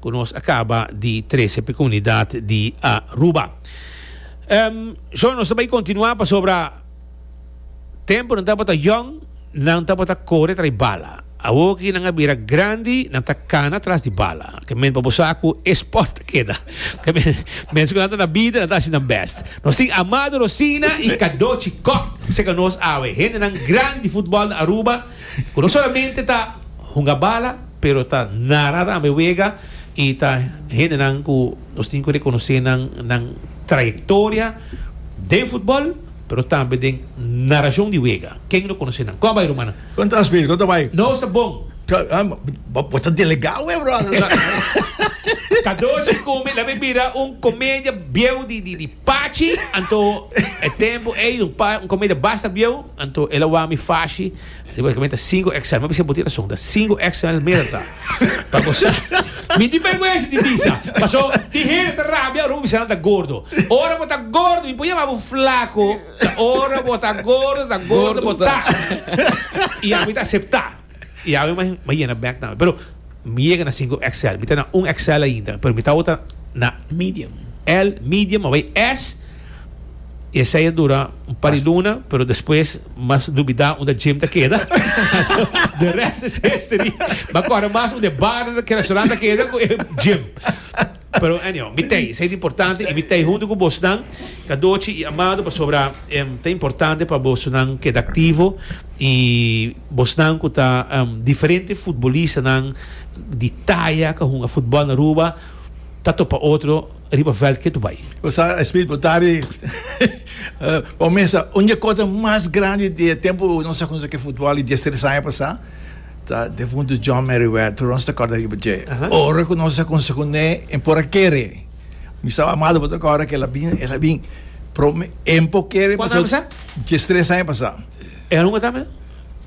Cu nos a caba di trece pe comunidad di Aruba. Sho, nos ta bay continua pasobra temponan tabata yong, nan tabata core trae bala. Awor ki nan a bira grandi, nan ta cana tras di bala. Te moment pa bo sa cu e sport a keda. Te moment cu nan ta na bida, nan ta haci nan best. Nos tin Amado Rosina y Cadochi Cop. Seca nos awe. Hendenan grandi di futbol na Aruba. Cu no solamente ta hunga bala, pero ta nara tambe wega y ta hendenan cu nos tin cu reconoce nan nan trayectoria den futbol, pero tambe den naracion di wega. Ken lo conoce nan? Con bay rumannan? Con ta Speed? Con ta bay? No sa bon. Bo ta delega we brother. Cadoci come labi bira un comedia bieu di di di. Pachi, anto e tempu ey un pa un comida basta bieu, anto el a wou mi fashi riba e meta cinco xl. Mi a bisa bo tin razon, ta cinco xl meda ta pa gosa. Mi tin bergwensa di bisa, paso tin hende ta rabia ora bo bisa nan ta gordo. Ora bo ta gordo, mi por yama bo flaco, ta ora bo ta gordo, ta gordo bo ta. Y ami ta acepta. I awe mi a yena bek tambe. Pero mi yega na sinku XL. Mi ta na un XL ainda. Pero mi ta awor ta na medium. L, medium, a bai S. I esei a dura un par di luna, pero despues mas dubidá unda Jim ta keda. De rest is history. Mi a kòrda mas unda e bar, ku e restaurant ta keda ku e Jim. Pero anyhow, mi t'ei, esei ta importante i mi t'ei huntu ku bosonan, Kadochi i Amado, pasobra em ta importante pa bosonan keda aktivo i bosonan ku ta em diferente futbolistanan di taya ku a hunga futbòl na Aruba ta topa otro riba vèlt ke tu bai. Bo sa Smith bo ta di bo mester un di e kosnan mas grandi di e tempu nos a konse ke futbòl di dies tres aña pasá. Ta defuntu John Merriweather, tur nos ta corda riba dje. Ora cu nos a conse cu ne, e por a kere. Mi staba amado pa toca ora cu el a bin, el a bin. Prome, e por kere pasobra. Cuantu aña pasa? Diestres aña pasa. E a hunga tambe?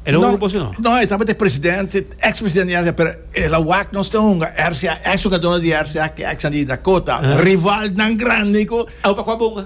El a hunga cu bos o no? No, e tabata e presidente, ex presidente di RCA, pero el a wak nos ta hunga. RCA, ex jugadornan di RCA cu exnan di Dakota, rivalnan grandi cu. Awe pa cua bo hunga?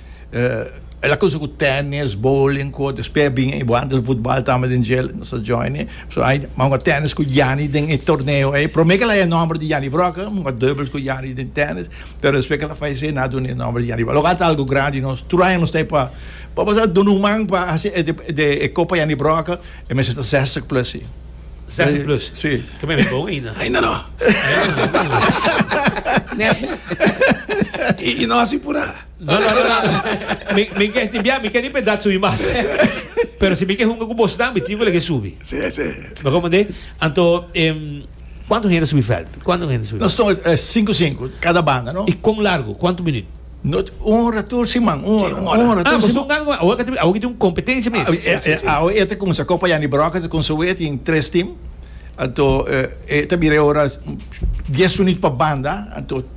el a cusa cu tennis, bowling, cu oto espe bin y bo antes di futbal tamba den jail nos a join e so ai mango tennis cu Janny den e torneo ei prome ke laya e nomber di Janny Brokke mango dubbels cu Janny den tennis pero despues ke el a fayese na duna e nomber di Janny Brokke lo ata algo grandi y nos tur aña nos ta ey pa pa pasá duna un man pa haci e de e copa Janny Brokke e mester ta zestig plus si zestig plus si ke men a bon ainda ainda no ainda no y nos y pura. No, no, no, no. Mi, mi ke ti bia, mi ke ni pe dat subi mas. Pero si mi ke hunga ku bos dan, mi tingo lege subi. Sí, sí. Me komende? Anto, em, kwanto hende subi veld? Kwanto hende subi? Nos tong eh, cinco cinco, cada banda, no? I kon largo? Kwanto minut? No, un hora tur sin man, un Sí, hora, un un hora. hora Ah, tur bos sin tong man. gan, awo ka te, awo ki tin un kompetensia mes. Ah, Sí, eh, sí, eh, sí. awo e ta kumsa kopa Yanni Broca, ta kumsa we, tin tres team. Anto, eh, e ta bira e hora dies minut pa banda, anto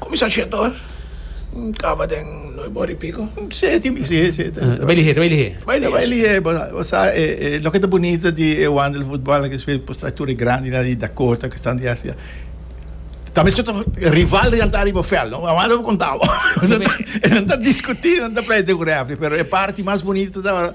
Kumisa Shetor kaba den noi bo ripiku. Seti mi si e seti. Ta bai lihé, ta bai lihé. Ta bai lihé. Ta bai lihé, bo sa, bo sa e, e loke ta bunita di e wanda di futbal aki spel por trae tur e grandi nan di Dakota ku stan di Arcia. Ta mester ta rival riba nan ta riba vèl no, bo mester konta bo. Nan ta diskutí, nan ta pleita ku refri, pero e parti mas bunita ta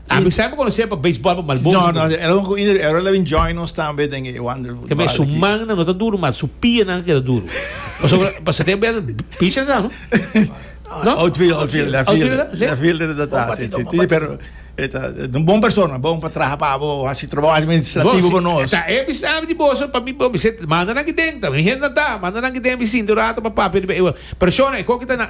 A mi sempre conocer pa baseball pa Malboso. No, no, era un coinder, era la bin join nos tambe den e wonderful. Tambe su man no ta duro, maar su pie nan keda duro. Paso paso te ben pitcher dan. No? Outfield, outfield, left field. Left field de data. Sí, sí, sí, pero eta un bon persona, bon pa traha pa bo, hasi trabajo administrativo pa nos. Ta e bis abi di boso pa mi pa mi set manda nan ki den, ta mi henda ta, manda nan ki den bisin tu rato pa papi. Persona e kokita na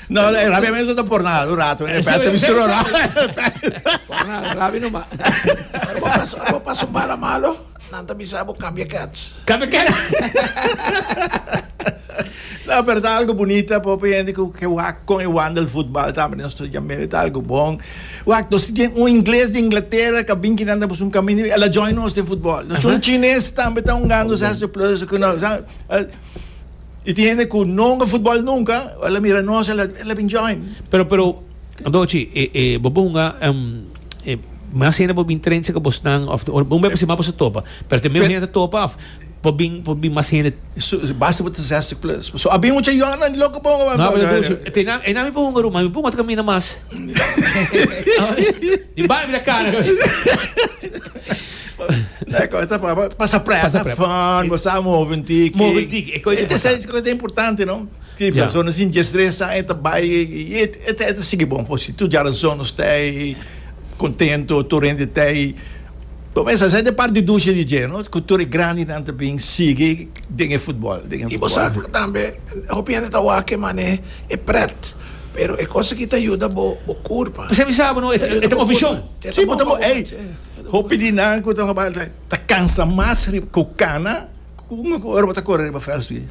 No, e rabia mes no ta por nada, un rato, en efecto, mi solo Por nada, rabia no ma. Ora bo pasa, ora bo pasa un bala malo, nan ta bisa bo cambia cats. Cambia cats. No, pero ta algo bonita, popi gente cu que wak con e wandel voetbal tambe nos to jamere ta algo bon. Wak, nos ti un inglés de Inglaterra que bin kinan pues un camino, ela join nos den voetbal. Nos un chines tambe ta un gando, se hace plus, que no, Y tin hende cu no hunga futbol nunca, ora a mira nos el a bin join. Pero, pero, Dochi, e, e, bo bo hunga, em, e, mas hende bo bin train seca bosnan, of, or, un bepasi mas boso topa, pero te meo hende topa, of, bo bin, bo bin mas hende. So, basta bo ta zestig plus. So, a bin mucha jornan di loco bo hunga. No, pero Dochi, te na, e na mi bo hunga ruma, mi bo hunga ta caminda mas. Di bai mi ta cara. Pasa presa, fun, bo sa move un tiki. Move un tiki, e kos importante. E kos importante, no? Ki persona sin destresa e ta bai, i e ta sigui bon por si. Tur djara zon nos t'ei contento, tur hende t'ei. Bo mester a sa, esei par di dusha di dje, no? Ku tur e grandinan ta bin sigui den e futbol. I bo sa tambe, hopi hende ta wak e manera e pret, pero e kos aki ta yuda bo kurpa. P'esei mi sa bo, no? E ta move shon. Si, bo ta move, ey. Hopi di nan ku ta hopi alta ta kansa mas riba ku kana ku un ora bo ta kore riba fèls tu i.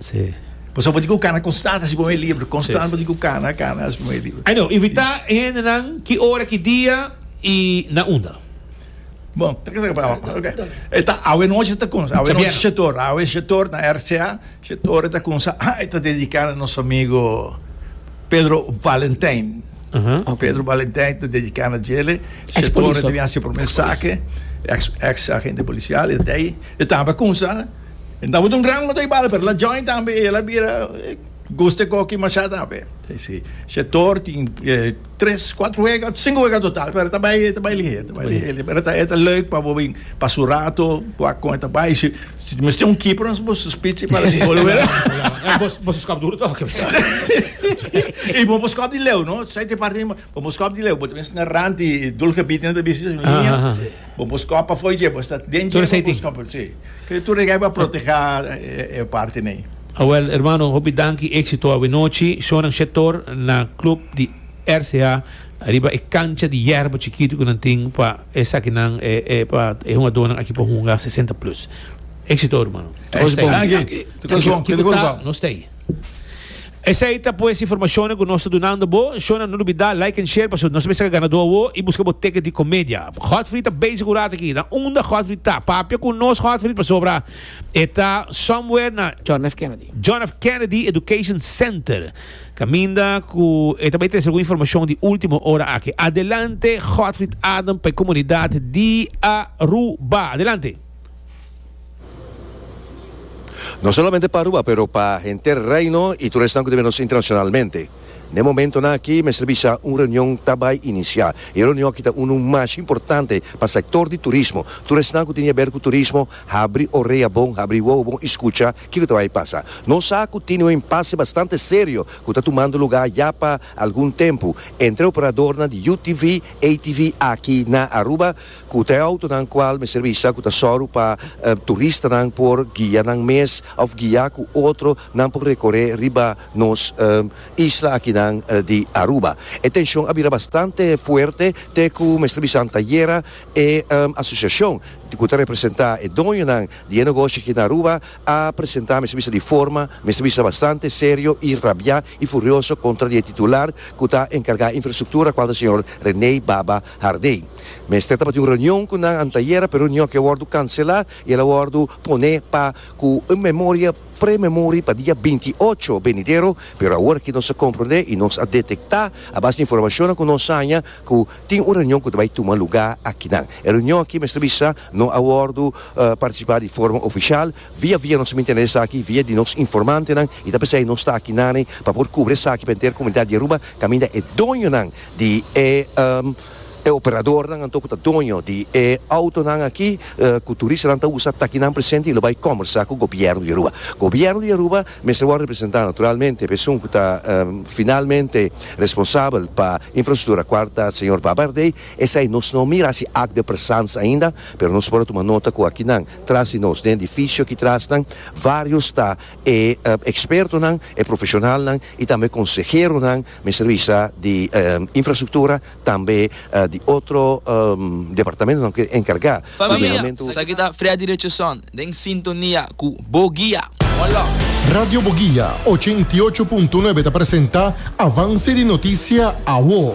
Pasobra bo tin ku kana konstant hasi primer libro, konstant bo tin ku kana, kana hasi primer libro. Ay no, invitá e hendenan ki ora, ki dia i na unda? Bon, ta kasa pa awa. Ok. E ta awe nochi ta kumsa, awe nochi shet or, awe shet or na RCA, shet or e ta kumsa, e ta dediká na nos amigu. Pedro Valentijn. Aha, ok. Pedro Valentijn te dedica na djele. Ex Se polis torna te tok. hace primer Ex polis. saque. Ex, ex agente policial. E dei, e tamba cunsa. E tamba ta un gran motor bala, pero la join tambe. E la bira, e guste coki masha tambe. Sí, sí. Se tor tin, e tres, cuatro wega, cinco wega total, pero e ta bay, e ta bay lihé, e ta bay lihé. Pero e ta, e ta leuk pa bo bin pasa un rato, wak con e ta bay. Si. Si ta mester un keeper nos bo suspitsi pa haci gol awor. Nah, bo bo skop duro tok. y bo bo skop di leu, no? Sai te parti bo bo skop di leu, bo ta mester na rand di doelgebied na ta bisi na liña. Ah, ah, ah. Bo bo skop pa fo'i dje, bo sta den Tur dje esei bo tin. bo skop, sí. Pero tur esei pa proteha e, e parti nei. Awel, hermano, hopi danki, éxito awenochi. Shonan Shetor na club di RCA, riba e cancha di yerba chikito cu nan tin pa Esakinan e e pa e hungadónan aki por hunga sesenta plus. Éksito hermano. Nos ta ei. Esei ta pues informashonnan ku nos ta dunando bo. Shona no lubidá like en share pasobra nos mester saka ganadó awó i buska bo teket di komedia. Godfrey ta bezig un rato aki. Na unda Godfrey ta? Papia ku nos Godfrey pasobra e ta somewhere na John F. Kennedy Education Center. Caminda cu e ta bay trece algun informacion di ultimo ora aki. Adelante Godfrid Adam pa e comunidad di Aruba. Adelante. No solamente pa Aruba pero pa henter Reino y tur esnan cu ta bira nos internacionalmente. N'e momentonan aki mester bisa un reunion ta bay inicia. E reunion aki ta unu mashi importante pa sector di turismo. Tur esnan cu tin di haber cu turismo Habri orea bon, habri wowo bon i skucha kiko ta bai pasa. Nos sa ku tin un impase bastante serio ku ta tumando lugá ya pa algun tempu entre operadornan di UTV, ATV aki na Aruba ku ta e outonan kual mester bisa ku ta sòru pa turistanan por guia nan mes òf guia ku otro nan por rekoré riba nos isla akinan di Aruba. E tenshon a bira bastante fuerte te ku mester bisan ta yera e asosiashon. di ku ta representá e doñonan di e negoshi aki na Aruba, a presentá mester bisa di forma, mester bisa bastante serio i rabiá i furioso kontra di e titular ku ta enkargá infrastruktura, kual ta señor René Baba Hardé. Mester tabatin un reunion ku nan antayera, pero e reunion aki a wòrdu kanselá i el a wòrdu pone pa ku un memoria pre-memori pa dia binti ocho benidero, pero awor aki nos a komprondé i nos a detektá a base di informashonnan ku nos haña ku Tin un reunion ku ta bai tuma lugá akinan. E reunion aki mester bisa no a wòrdu partisipá di forma ofishal. Via via nos a mintende esaki via di nos informantenan i ta p'esei nos ta akinane pa por kubri esaki pa enter komunidat di Aruba kaminda e doñonan di e operadornan anto ku ta doño di e outonan aki ku turistanan ta usa ta akinan presente i lo bai kòmbersá ku gobièrnu di Aruba. Gobièrnu di Aruba. mester wòrdu representá naturalmente p'e esun ku ta finalmente responsabel pa infrastruktura kuarta, señor Babarde. Esei nos no mira hasi akt de presans ainda, pero nos por a tuma nota ku akinan tras di nos, den edifisio aki trasnan, vários ta e ekspertonan, e profeshonalnan i tambe konseheronan mester bisa di infrastruktura, tambe di otro departamentonan ku ta enkargá ku den momentu. Sa ki ta Freddy Richardson den sintonia ku Bo Guia. Hola. Radio Bo Guia ochenta i ocho punto nuebe ta presenta Avance di Noticia Awo.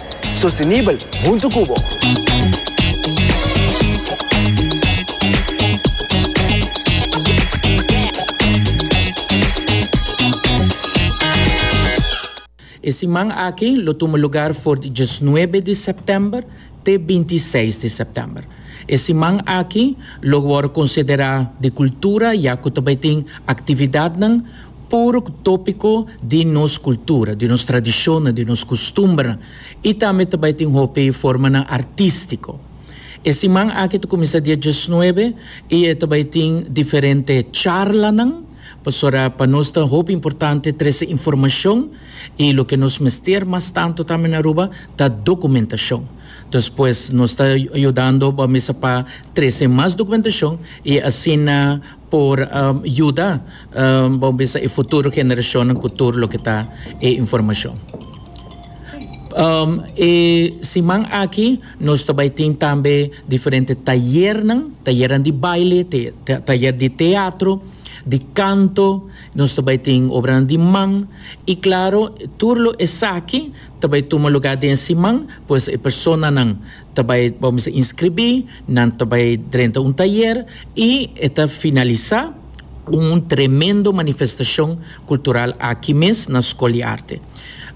Sostenibel huntu cu bo. E siman aki lo tuma lugar for di diesnuebe di sèptèmber te bintiseis di sèptèmber. E siman aki lo wòrdu konsiderá di kultura ya ku ta bai tin aktividatnan, puru ku tópiko di nos kultura, di nos tradishonnan, di nos kustumbernan i tambe ta bai tin hopi formanan artístiko. E siman aki ta kuminsá dia diesnuebe i e ta bai tin diferente charlanan pasobra pa nos ta hopi importante trese informashon i loke nos mester mas tantu tambe na Aruba ta dokumentashon. Entonces pues nos ta yudando bo mesa pa trese mas dokumentashon i asina. por yuda bo bisa e futuro generashonnan ku tur loke ta e informashon. E siman aki nos ta bai tin tambe diferente tayernan, tayernan di baile, tayer di teatro, di kanto, nos ta bai tin obranan di man i klaro tur lo esaki ta bai tuma lugá den e siman, pues e personanan Ta bai bo mester inskribí, nan ta bai drenta un tayer i e ta finalisá ku un tremendo manifestashon kultural aki mes na Skol di Arte.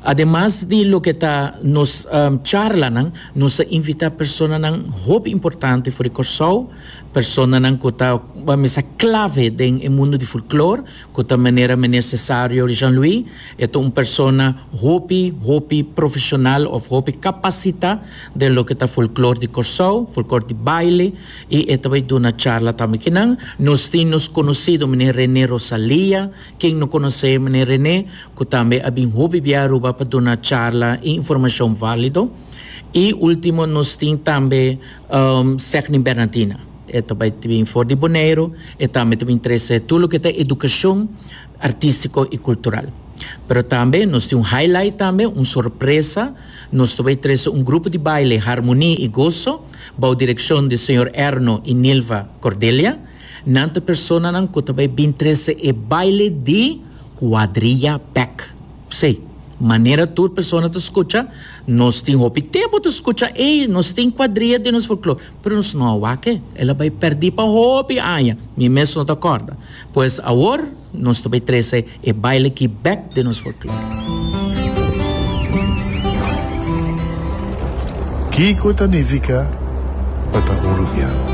Ademas di loke ta nos charlanan, nos a invitá personanan hopi importante for di Kòrsou, personanan ku ta mester klave den e mundu di folklor, Cu ta manera Meneer Cesario Jean-Louis e ta un persona hopi, hopi profesional of hopi capacita den loke ta folklor di Corsou, folklor di baile y e ta bay duna charla tambe ki nan. Nos tin nos conocido Meneer Rene Rosalia, ken no conoce Meneer Rene, cu tambe a bin hopi bia Aruba pa duna charla y informacion valido. Y ultimo nos tin tambe Sechny Bernardina. E ta bai ta bin for di Boneiru, e tambe ta bin trese tur loke ta edukashon artistiko i kultural. Pero tambe nos tin un highlight tambe, un sorpresa, nos ta bai trese un grupo di baile Harmoni i Goso bou direkshon di señor Erno i Nilva Cordelia. Nan ta personanan ku ta bai bin trese e baile di Kuadrilla Bek. Sí, manera tur persona ta scucha, nos tin hopi tempo ta scucha ey, nos tin cuadria den nos folklor, pero nos no a wak e, el a bay perdi pa hopi aña, mi mes no ta corda. Pues awor nos ta bay trece e baile aki bek den nos folklor. Kico ta nifica pa ta Uruguiano?